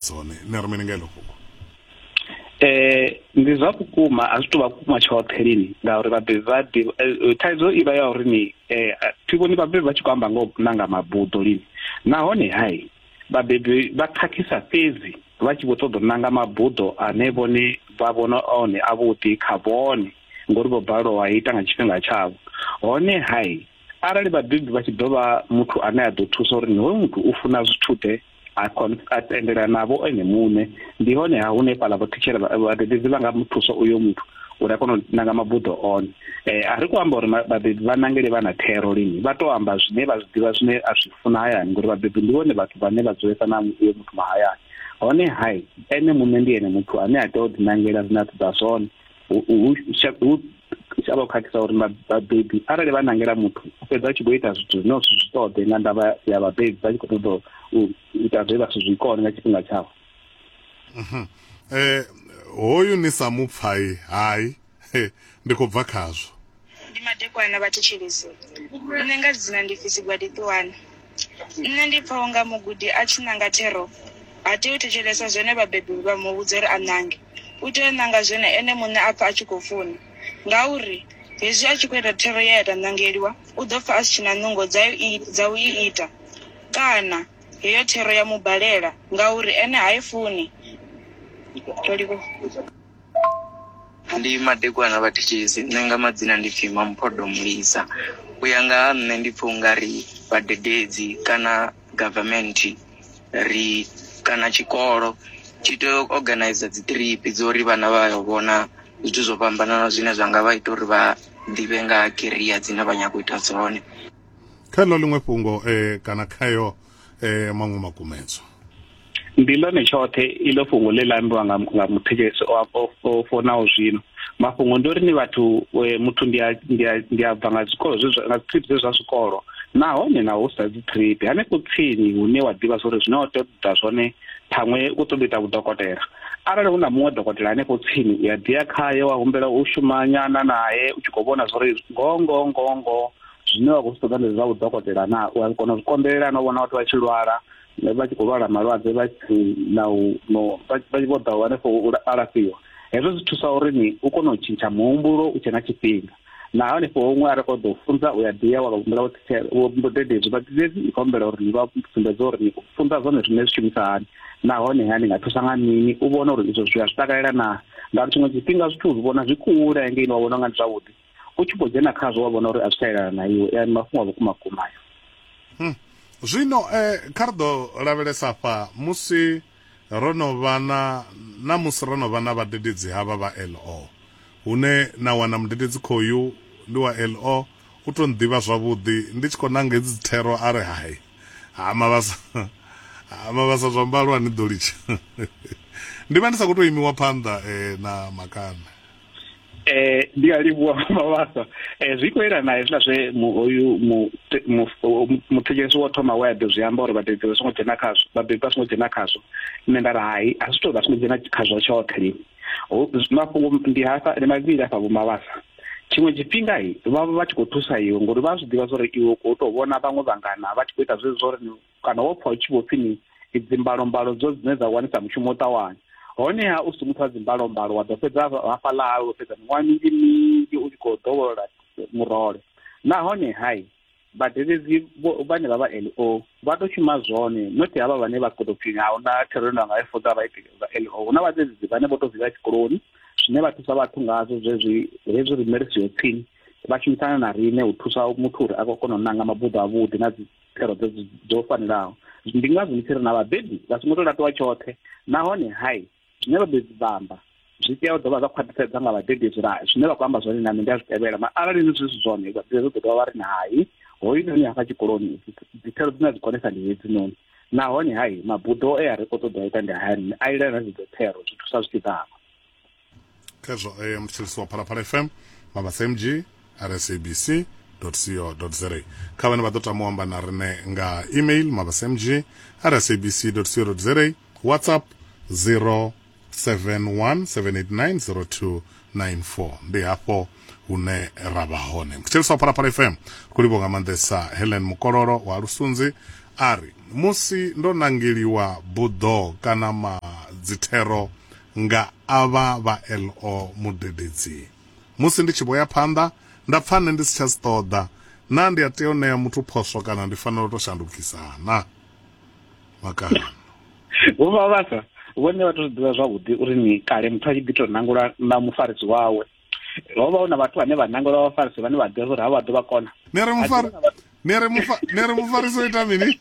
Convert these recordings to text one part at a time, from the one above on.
dzone nṋe ri mini nga iḽo fhungo eh ndi zwa vhukuma a zwi tou vha vhukuma tshoṱhe lini ngauri vhabebi vha ḓivha eh, eh, thaidzo i vha ya uri ni eh, thi vhoni vhabebi vha tshi khou amba nga u nanga mabuḓo lini nahone hai vhabebi vha khakhisa fhedzi vha tshi vho ṱoḓa u nanga mabuḓo ane vhone vha vhona one avhuḓi kha vhone ngori vho balelwa wa ita nga tshifhinga tshavho hone hai arali vhabebi vha tshi ḓo vha muthu ane a ḓo thusa uri hoyu muthu u funa zwithu ḓe a kon a tendela navho ene muṋe ndi hone ha hune fhala vho thitshela vhadededzi vha nga muthusa uyo muthu uri a kone u nanga mabuḓo one eh a ri kho amba uri vhabebi vha nangele vha na thero lini vha to amba zwine vha zwi ḓivha zwine a zwi funa hayani ngori vhabebi ndi vhone vhathu vhane vha dzulesa na uyo muthu mahayani hone hai ene muṋe ndi ene muthu ane a tea u ḓinangela zwine a ṱoḓa zwone hu a vha khakhisa uri vhabebi arali vha nangela muthu u fhedza a tshi khou ita zwithu zwine zwi zwi ṱoḓe nga ndavha ya vhabebi vha tshi khou ṱoḓa u ita zwe vha si zwi kone nga tshifhinga tshavho mhm. eh hoyu ni sa mupfai hai ndi khou bva khazwo ndi madekwana vha thetshelese nṋe nga dzina ndi fisi gwadi ṱuwani nṋe ndi pfa unga mugudi a tshi nanga thero ha tei u thetshelesa zwone vhabebi vha mu vhudza uri a nange u tea u nanga zwone ene muṋe a pfa a tshi khou funa ngauri hezwi a tshi khou ita thero ye ya ta nangeliwa u ḓo pfa a si tshi na nungo dza u i- dza u i ita kana heyo thero ya mu balela ngauri ene ha i funi Toliko. ndi madekwana vha thitshisi nṋe nga madzina ndi pfhi mamphodo mulisa u ya nga ha nṋe ndi pfha ungari vhadededzi kana government ri kana tshikolo tshi tea u organizer dzi trip dzo uri vhana vha yo vhona zwithu zwo fhambananaho zwine zwa nga vha ita uri vha ḓivhe nga ha career dzine vha nyago u ita dzone kha ḽo ḽiṅwe fhungo um kana khayo eh maṅwe makumedzwa ndi ḽone tshoṱhe iḽo fhungo ḽe ḽa ambiwa nga nga muthetshelesi o fonaho zwino mafhungo ndi uri ni vhathu e, muthu ndi a ndi a ndi a bva nga zwikolo zwe nga trip zwe zwa zwikolo nahone na hu sa dzi trip hanefho tsini hune wa ḓivha zwori zwine wa tea u ḓa zwone ṱhaṅwe u ṱoḓa ita vhudokotela arali hu na muṅwe dokotela hanefho tsini u ya ḓi ya khaye wa humbela u shuma nyana naye u tshi khou vhona zwori ngoho ngoho ngoho ngoho zwine wa khou zwi ṱoḓa ndi zwa vhudokotela na u a kona u zwi konḓelela na u vhona vhathu vha tshi lwala vha tshi khou lwala malwadze vha tshi na u no vha tshi vho ḓa hanefho u alafhiwa hezwo zwi thusa uri ni u kone u tshintsha muhumbulo u tshe na tshifhinga na hanefho huṅwe a ri khou ḓo funza u ya ḓiya wa humbula vhudededzi vhadededzi i khou humbela uri ni vha sumbedze uri ni funza zwone zwine zwi shumisa hani nahone ha ni nga thusa nga mini u vhona uri izwo zwi a zwi takalela na ngauri tshiṅwe tshifhinga zwithu zwi vhona zwi kule ngei ni wa vhona nga ndi zwavhuḓi u tshi khou dzhena khazwo wa vhona uri a zwi tsha elana na iwe ndi mafhungo a vhukuma vhukuma ayo hmm. zwino um kha ri ḓo lavhelesa fha musi ro no vha na na musi ro no vha na vhadededzi havha vha lo hune na wana mudededzi khoyu ndi wa lo u to nḓivha zwavhuḓi ndi tshi khou nanga hedzi dzi thero a ri hai ha mavhasa ha mavhasa zwa mbalo a ni ḓo litsha ndi vha ndi sa khou tou imiwa phanḓa um na makana eh ndi a livhuwa mavhasa eh zwi khou elana hezwiḽa zwe hoyu muthetshelesi wo thoma we a ḓo zwi amba uri vhabebi vha songo dzhena khazwo vhabebi vha songo dzhena khazwo nṋe nda ri hai a zwi tou vha songo dzhena khazwo tshoṱhe lini mafhungo ndi hafha ndi mavhili hafha vho mavhasa tshiṅwe tshifhinga vha vha tshi khou thusa iwe ngori vha zwi ḓivha zwa uri iwe u khou tou vhona vhaṅwe vhangana vha tshi khou ita zwezwo uri Kana wo pfa hu tshi vho pfi ni dzimbalombaloo dzo dzine dza wanisa mushumo u ṱawanya? Honeha u si muthu wa dzimbalombaloo, wa ḓo fhedza hafhaḽa hawe wo fhedza miṅwaha minzhi minzhi u tshi khou dovholola murole. Nahone, hai, vhadededzi vhane vha vha LO vha tou shuma zwone, not havha vhane vha khou tou pfi a hu na thero ine nda nga i funza vhaiti vha LO. Hu na vhadededzi vhane vho tou zwi vhea tshikoloni, zwine vha thusa vhathu ngazwo zwezwi hezwi riṋe ri siho tsini, vha shumisana na riṋe u thusa muthu uri a khou kona u nanga mabuḓo avhuḓi na dzi. thero dzo dzo fanelaho ndi ngazwo ndi tshi ri na vhabebi vha songo to latiwa tshoṱhe nahone hai zwine vhabebi vha amba zwi tea u dovha zwa khwaṱhisedza nga vhabebi zwira zwine vha khou amba zwone na nṋe ndi a zwi tevhela ma arali ni zwi zwi zwone vhabebi zwo ḓo dovha vha ri na hai hoyu noni hafha tshikoloni dzithero dzine a dzi konesa ndi hedzi noni nahone hai mabuḓo e a ri khou ṱoḓa u ita ndi hayani a ilana dzidzo thero zwi thusa zwi tshi ḓavha khezwo eh, mthetshelisi wa phalaphala fm mabasa mg rsabc co za kha vhane vha ḓo tama u amba na rine nga email mabasa mg rsabc co za whatsapp 0717890294 ndi hafho hune ra vha hone mthetshelisi wa phalaphala fm ku livho nga maanḓesa helen mukololo wa lusunzi a ri musi ndo nangeliwa buḓo kana madzithero nga avha vha LO mudededzi. Musi ndi tshi vho ya phanḓa, nda pfa nṋe ndi si tsha zwi ṱoḓa. Naa ndi a tea u ṋea muthu phoswo kana ndi fanela u tou shandukisa na? Makano. Vho Vhavhasa vhone vha tou zwi ḓivha zwavhuḓi uri ni kale muthu a tshi ḓi tou nangula na mufarisi wawe. ho vha hu na vhathu vhane vha nangela vhafarisi vhane vha ḓivha uri ha vha ḓo vha kona nere mufari nere mufa nere mufarisi o ita mini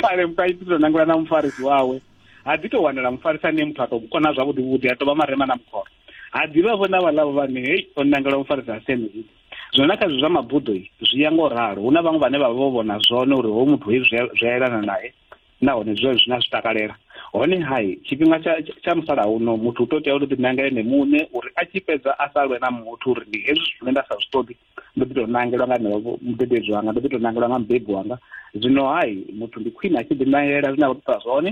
kale muthu a tshi to nangula na mufarisi wawe ha ḓi to wanela mufarisi ane muthu a to kona zwavhuḓi vhuḓi a to vha marema na mukhoro ha ḓivha vho na vhaḽavho vhane hei o nangela mufarisi a sene zwino zwino na kha zwi zwa mabuḓo zwi ya ngo ralo hu na vhaṅwe vhane vha vha vho vhona zwone uri ho muthu hei zwi a elana naye nahone zwi zwi na zwi takalela hone hai tshifhinga tsha tsha musalauno muthu u to tea u ḓi nangela ene muṋe uri a tshi fhedza a sa lwe na muthu uri ndi hezwi zwithu zwine nda sa zwi ṱoḓi ndo ḓi to nangelwa nga henevho mudededzi wanga ndo ḓi to nangelwa nga mubebi wanga zwino hai muthu ndi khwine a tshi ḓi nangela zwine a khou ṱoḓa zwone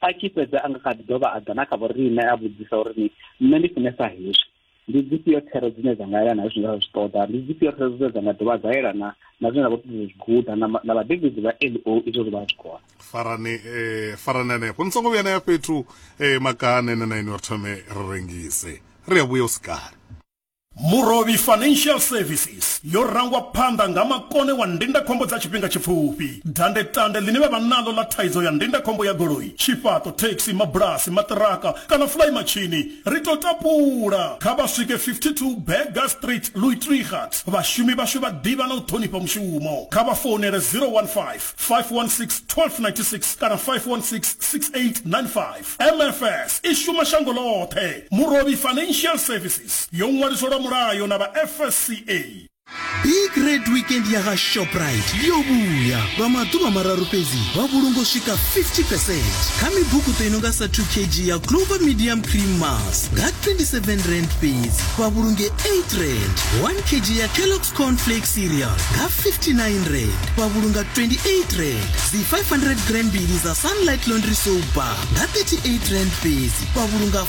a tshi fhedza a nga kha ḓi dovha a ḓa na kha vhoriṋe a vhudzisa uri ni nṋe ndi funesa hezwi ndi dzifhio thero dzine dza nga yelana na zwine ra zwi ṱoḓa ndi dzifhio thero dzine dza nga dovha dza yelana na zwine ra khou ṱoḓa zwi guda na vhadededzi vha l o izwo zwi vha zwi khona farani eh, farani hanefho ni songo vhuya na ya fhethu eh, makane na naini uri thome ri rengise ri a vhuya u sikale Murovhi Financial Services yo rangwa phanḓa nga makone wa ndindakhombo dza tshifhinga tshipfufhi dandetande ḽine vha vha naḽo ḽa thaidzo ya ndindakhombo ya goloi tshifhaṱo thekhisi mabulasi maṱiraka kana fulayi matshini Ri tou tapula, kha vha swike 52 Burger Street, Louis Trichardt. Vhashumi vhashu vha ḓivha na u ṱhonifha mushumo. Kha vha founele 015 516 1296 kana 516 6895. MFS i shuma shango ḽoṱhe. Murovhi Financial Services yo ṅwaliswa lwa mulayo na vha FSCA. big red weekend ya vha shoprite yo vhuya lwa maḓuvha mararu fhedzi vha vhulungo swika 50 percent kha mibukuṱo i nonga sa 2 kg ya clover medium cream mas nga 27 rand fhedzi vha vhulunge 8 rand 1 kg ya kellox cornflake cereal nga 59 rand vha vhulunga 28 rand dzi 500 gram mbili za sunlight laundry soap bar nga 38 rand fhedzi vha vhulunga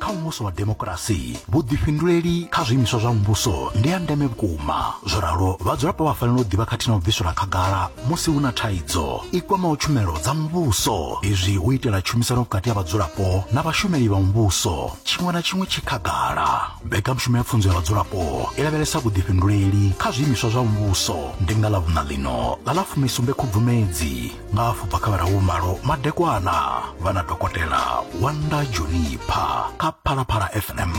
kha muvhuso wa demokirasi vhuḓifhinduleli kha zwiimiswa zwa muvhuso ndi ya ndeme vhukuma zwo ralo vhadzulapo vha fanela u ḓivha khathihi na u bviselwa khagala musi hu na thaidzo i kwamaho tshumelo dza muvhuso izwi hu itela tshumisano vhukati ha vhadzulapo na vhashumeli vha muvhuso tshiṅwe na tshiṅwe tshi khagala mbekanyamushumo ya pfunzo ya vhadzulapo i lavhelesa vhuḓifhinduleli kha zwiimiswa zwa muvhuso ndi nga ḽa vhuṋa ḽino ḽa ḽa fumisumbe khubvumedzi nga afho bva kha vhararu malo madekwana vha na dokotela wanda junipha kha phalaphala fm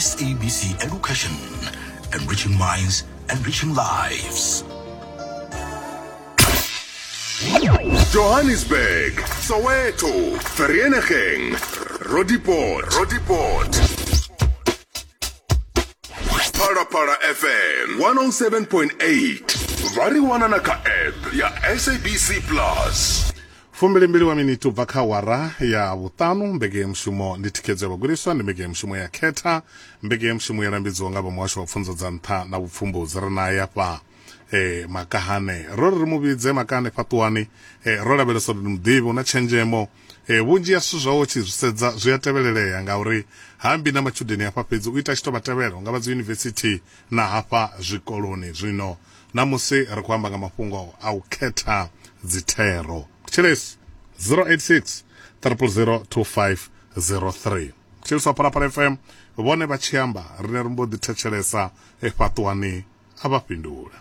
sabc education enriching minds enriching lives Johannesburg, Soweto, Vereeniging, Roodepoort, Roodepoort. phalaphala fm 107.8 vha ri wana na kha app ya sabc plus fumbilimbili wa miniti ubva kha wara ya vhuṱanu mbekeyamushumo ndi thikhedzo ya vhagudiswa ndi mbekeyamushumo ya khetha mbekeyamushumo ya lambedziwa nga vha muhasho wa pfunzo dza nṱha na vhupfumbudzi ri naye afha eh, makahane ro ri ri mu vhidze makahane fhaṱuwani eh, ro lavhelesa uri ndi muḓivhi una tshenzhemo Ee, vhunzhi ha zwithu zwawe u tshi zwi sedza zwi a tevhelelea ngauri ha ambi na matshudeni hafha fhedzi, u ita a tshi tou vha tevhela u nga vha dziyunivesithi na hafha zwikoloni. Zwino ṋamusi ri khou amba nga mafhungo a u khetha dzithero. Thetshelesi 086 000 2503. Thetshelesi wa Phalaphala FM vhone vha tshi amba riṋe ri mbo ḓi thetshelesa fhaṱuwani, a vha fhindula.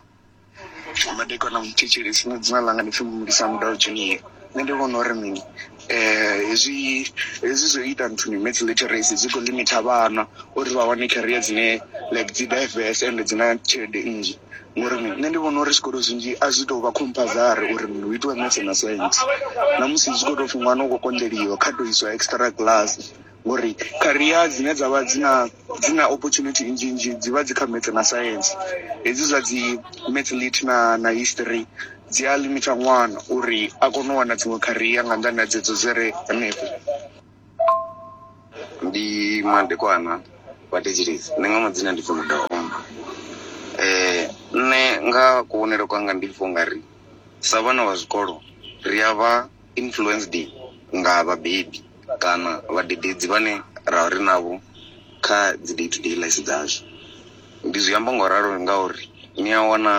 madekwana muthetshelesi nṋe dzina ḽanga ndi pfhi mulisa mudau junior nṋe ndi vhona uri mini hezwi hezwi zwo ita nthuni maths literacy zwi khou limiter vhana uri vha wane career dzine like dzi diverse and dzi na tshelede nnzhi ngori mini nṋe ndi vhona uri zwikolo zwinzhi a zwi tou vha compulsory uri mini hu itiwe maths na science ṋamusi zwi khou tou pfhi ṅwana u khou konḓeliwa kha tou iswa extra class ngori career dzine dza vha dzi na dzi na opportunity nnzhi nnzhi dzi vha dzi kha maths na science hedzi zwa dzi maths lit na na history dzi a limita ṅwana uri a kone u wana dziṅwe kharia nga nḓani ha dzedzo dzi re hanefho ndi madekwana vha thetshelesi nṋe nga madzina ndi pfi mudaomba um nṋe nga kuvhonele kwanga ndi pfha ungari sa vhana vha zwikolo ri a vha influenced nga vhabebi kana vhadededzi vhane ra vha ri navho kha dzi day to day life dzashu. Ndi zwi amba nga u ralo ngauri ni a wana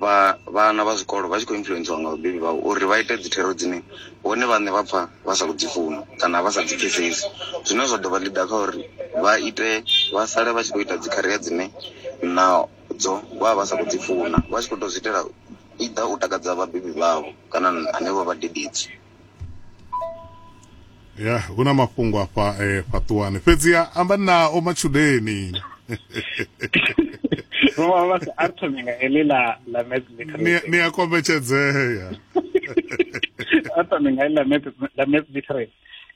vha vhana vha zwikolo vha tshi khou influencer nga vhabebi vhavho uri vha ite dzi thero dzine vhone vhaṋe vha pfha vha sa khou dzi funa kana vha sa dzi pfhesesi. Zwine zwa ḓo vha ḽiga kha uri vha ite vha sale vha tshi khou ita dzi career dzine nadzo vha vha vha sa khou dzi funa vha tshi kho to zwi itela i ḓa u takadza vhabebi vhavho kana hanevho vhadededzi ya hu na mafhungo afha eh, fhaṱuwani fhedziha amba nao matshudeni a thome nga heḽi ḽa ḽa maths literacy ni a kombetshedzea a thome nga heḽi ḽa maths literacy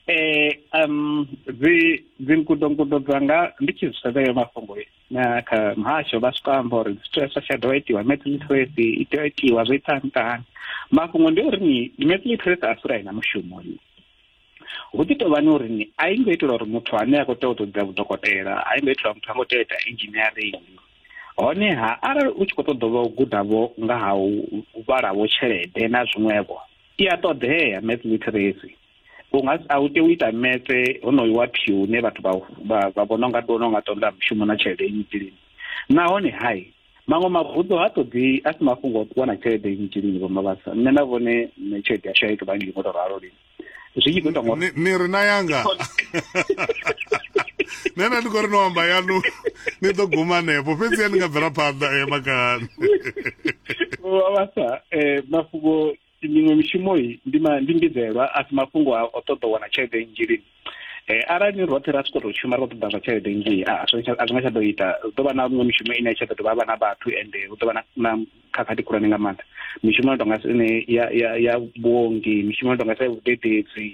eh um dzi dzi nkudo nkudo dzanga ndi tshi zwi sedza yo mafhungo na kha muhasho vha swika amba uri zwithu hezwo tsha dovha itiwa math literacy i tea itiwa zwo ita ntani mafhungo ndi uri ni math literacy a sura ina mushumo ni hu ḓi tovha ni uri ni a i ngo itela uri muthu ane a khou tea u tou dza vhudokotela a i ngo itela muthu a ngo tea u ita engineering honeha arali u tshi khou ṱoḓa vha u gudavho nga ha u vhalavho tshelede na zwiṅwevho i a ṱoḓea math literacy u nga a u tea u ita metse honoyu wa phiu une vhathu vha vhona u nga ḓiwana u nga ṱoḓa mushumo na tshelede nnzhi lini nahone hai maṅwe mavunḓu ha ṱoḓi a si mafhungo o wana tshelede nnzhi lini vho mavhasa nṋe na vhone nṋe tshelede yashu a i tou vha nnzhi ngo tou ralo lini zwi tshi khou ita ngori ni ri na yanga nṋe na ndi khou ri no amba yanu ni ḓo guma hanefho fhedzi ya ni nga bvela phanḓa e eh, makani vho mavhasa um eh, mafhungo miṅwe mishumo ndi ndi mbidzelwa a si mafhungo a o ṱoḓa u wana tshelede nnzhi lini um arali ni roṱhe ra soko tou shuma ri khou ṱoḓa zwa tshelede nnzhi a zwi nga tsha ḓo ita ri ḓo vha na miṅwe mishumo ine ya tsha ḓo dovha vha na vhathu ende hu ḓo vha na na khakhathi khulwane nga maanḓa mishumo yo tonga ine ya ya ya vhuongi mishumo yo tonga sa ya vhudededzi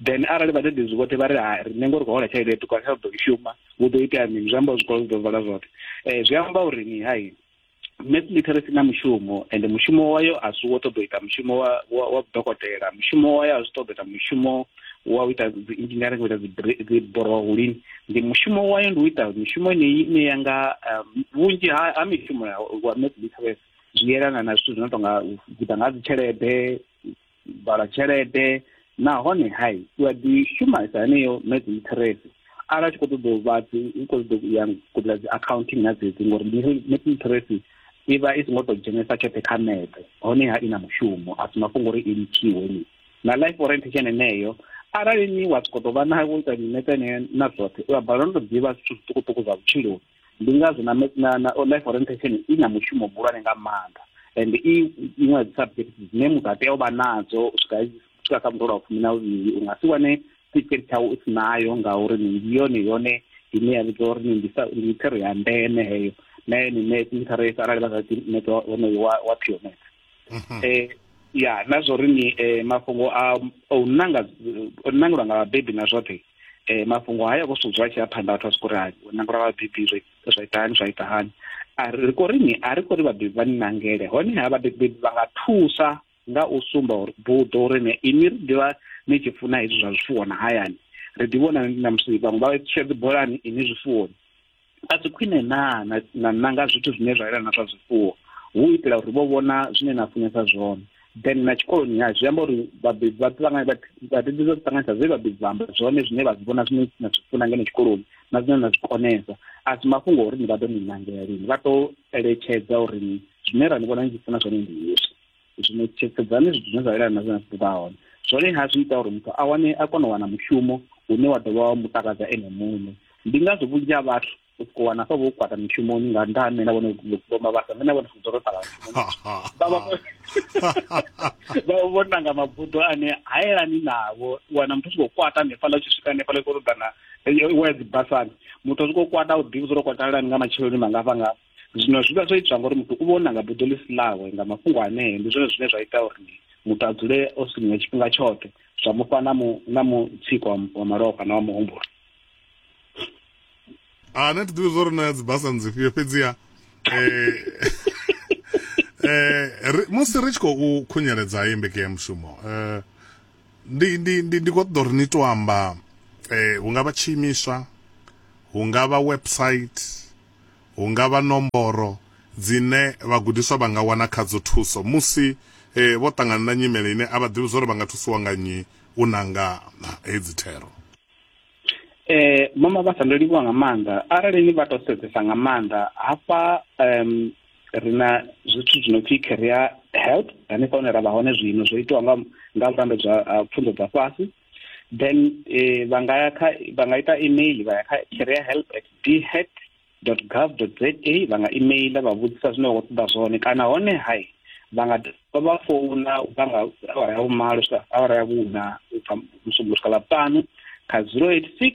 then arali vhadededzi vhoṱhe vha ri ha riṋe ngo ri khou hola tshelede ya ṱuku a tsha ḓo i shuma hu ḓo itea mini zwi amba zwikolo zwi ḓo vala zwoṱhe um zwi amba uri ni hai mass literacy na mushumo ende mushumo wayo a si wo ṱoḓa u ita mushumo wa wa wa vhudokotela mushumo wayo a zwi ṱoḓa ita mushumo wa u ita dzi engineering u ita dzi bri- dzi borohulini ndi mushumo wayo ndi u ita mishumo yeneyi ine ya nga um, vhunzhi ha ha mishumo ya wa mass literacy zwi yelana na zwithu zwi no tonga u guda nga ha dzitshelede vala tshelede nahone hai u a ḓi shumisa heneyo meds interest arali a tshi khou ṱoḓa u vha u khou ṱoḓa u ya kuḓa dzi accounting na dzedzi ngori meds interest i vha i songo tou dzhenesa tshoṱhe kha mede honeha i na mushumo a si mafhungo uri i litshiwe ni na life orientation eneyo arali ni wa sokou tou vha na wo ita miṋe tene na zwoṱhe u a balelwa no tou ḓivha zwithu zwiṱukuṱuku zwa vhutshiloni ndi ngazwo na na na life orientation i na mushumo muhulwane nga maanḓa and i iṅwe ya dzi subject dzine muthu a tea u vha nadzo u swika swika kha muḓolo wa fumi na vhuvhili u nga si wane certificate tshawu u si nayo ngauri ndi yone yone ine ya vhidza uri ndi ndi thero ya ndeme heyo na yone net interest arali vha sa ḓi net wonoyo wa wa pionet mhm. eh ya na zwo ri ni eh, mafhungo a o nanga o nangelwa nga vhabebi na zwoṱhe eh mafhungo haya ko sudzwa tshi a phanḓa vhathu a siko ri ha nanga ra vhabebi zwi zwa ita hani zwa ita hani a ri ko ri ni a ri ko ri vhabebi vha ni nangele hone ha vhabebi vha nga thusa nga u sumba uri buḓo uri ne ini ri ḓivha ni tshi funa hezwi zwa zwifuwo na hayani ri ḓi vhona na musi vhaṅwe vha tshedzi bolani ini zwifuwoni a si khwine naa na na nanga zwithu zwine zwa yelana zwa zwifuwo hu u itela uri vho vhona zwine na funesa zwone then na tshikoloni ha zwi amba uri vhabebi vha ṱangana vhabebi vha ṱanganisa zwe vhabebi vha amba zwone zwine vha zwi vhona zwine na zwi funa ngeno tshikoloni na zwine na zwi konesa a si mafhungo uri ni vha ḓo ni nangela lini vha tou eletshedza uri zwine ra ni vhona ni tshi funa zwone ndi hezwi zwino tshekedzani zwithu zwine zwa elana na zwine zwa hone zwone ha zwi ita uri muthu a wane a kone u wana mushumo une wa dovha wa mu takadza ene muṋe ndi ngazwo vhunzhi ha vhathu u siko wana sa vho kwata mishumoni nga nda ha mena vhone vhoma vhasa mena vhone fudzo ro tala vha vho nanga mabuḓo ane hayelani navho wana muthu siko kwata ne fala tshi swika ne fala ko ṱoḓana wa dzi basani muthu siko kwata u ḓivha zwo kwata lani nga matsheloni mangafha ngafha zwino zwi vha zwo itwa ngori muthu u vha o nanga buḓo ḽi si ḽawe nga mafhungo anee ndi zwone zwine zwa ita uri muthu a dzule o sinywa tshifhinga tshoṱhe zwa mufha na mu na mutsiko wa malofha na wa muhumbulo a ah, na thi ḓivhi zwo ri na dzibasa ndzifhio fhedziha eh, eh, musi ri tshi khou khunyeledza hei mbekeyamushumo um eh, ndi ndi ndi ndi khou ṱoḓa uri ni to amba um hu nga vha tshiimiswa hu nga vha website Hu nga vha nomboro dzine vhagudiswa vha nga wana khadzo thuso musi vho ṱangana na nyimele ine a vha ḓivhi zwa uri vha nga thusiwa nga nnyi u nanga hedzi thero. Mama Vhasa, Ndo livhuwa nga maanḓa. Arali ni vha tou sedzesa nga maanḓa hafha ri na zwithu zwi no pfhi career help hanefha hune ra vha hone zwino zwo itiwa nga nga vhulambedzi ha pfunzo dza fhasi. then eh, vha nga kha vha nga ita email vha ya kha career help at dhet dot gov dot za vha nga email vha vhudzisa zwine vha khou ṱoḓa zwone kana hone hai vha nga vha vha founa vha nga awara ya vhumalo swika awara ya vhuna u bva musumbulo swika ḽa ṱanu kha zero eight six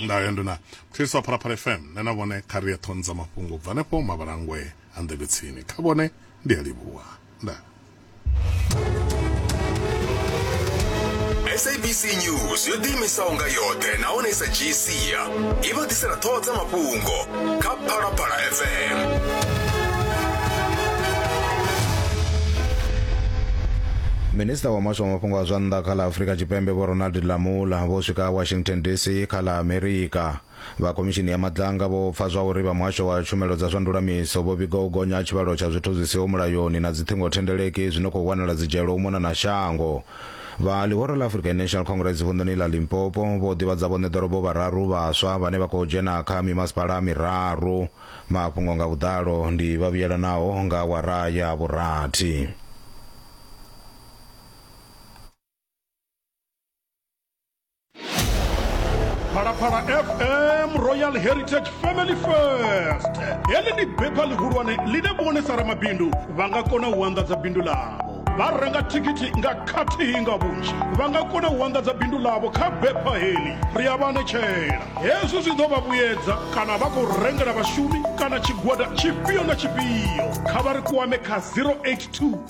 Ndayo ndi na Khristo a Phalaphala FM, nṋe na vhone kha ri ye ṱhoni dza mafhungo ubva henefho mavhalangwe a nḓevhe tsini. Kha vhone ndi a livhuwa. Ndaa. sabc news yo ḓiimisaho nga yoṱhe nahone i sa dzhii sia i vha ḓisela ṱhoho dza mafhungo kha phalaphala fm minista wa muhasho wa mafhungo a zwa nnḓa kha ḽa afurika tshipembe vho ronald lamula vho swika washington dc kha ḽa amerika vha khomishini ya madlanga vho pfa zwa uri vha muhasho wa tshumelo dza zwa ndulamiso vho vhiga u gonya ha tshivhalo tsha zwithu zwi siho mulayoni na dziṱhingothendeleki zwi no khou wanala dzidzhelo u mona na shango Vha ḽihoro ḽa African National Congress vunḓuni ḽa Limpopo vho ḓivhadza vhoṋe ḓorobo vhararu vhaswa vhane vha khou dzhena kha mimasipala miraru. Mafhungo nga vhuḓalo ndi vha vhuyelanaho nga awara ya vhurathi. phalaphala fm royal heritage family first heḽi ndi bepha ḽihulwane ḽine vhonesa ramabindu vha nga kona u anḓadza bindu ḽavho vha renga thikhithi nga khathihi nga vhunzhi vha nga kona u anḓadza bindu ḽavho kha bepha heḽi ri a vha anetshela hezwi zwi ḓo vha vhuyedza kana vha khou rengela vhashumi kana tshigwada tshifhio na tshifhio kha vha ri kwame kha 082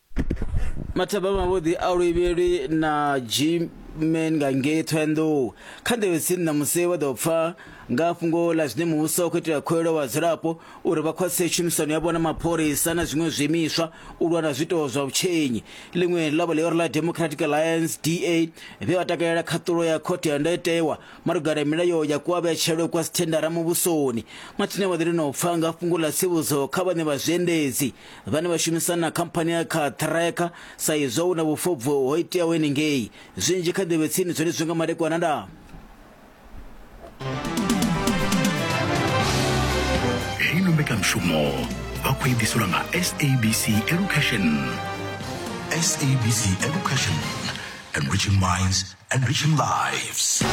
mathabama mavhuḓi a luvhili na gmen nga ngei thohoyandou kha nḓevhe tsini na musi vha ḓo pfa nga fhungo ḽa zwine muvhuso khou itela khuwelo vhadzulapo uri vha khwaṱhise tshumisano yavho na mapholisa na zwiṅwe zwiimiswa u lwa na zwiito zwa vhutshenyi ḽiṅwe ḽavho ḽi uri ḽa democratic alliance da vhe vha takalela khaṱulo ya khothe ya ndayotewa malugana milayo ya kuavhetshelo kwa sithendara muvhusoni mathina vha ḓo lino pfa nga fhungo ḽa tsivhudzo kha vhane vha zwiendedzi vhane vha shumisana na khamphani ya kha ṱhireka sa izwo hu na vhufobvu ho iteaho henengei zwinzhi kha ḓivhe tsini zwone zwi nga madekwana nda heyi no mbekanyamushumo vha khou ediselwa nga sabc education sabc education enriching minds enriching lives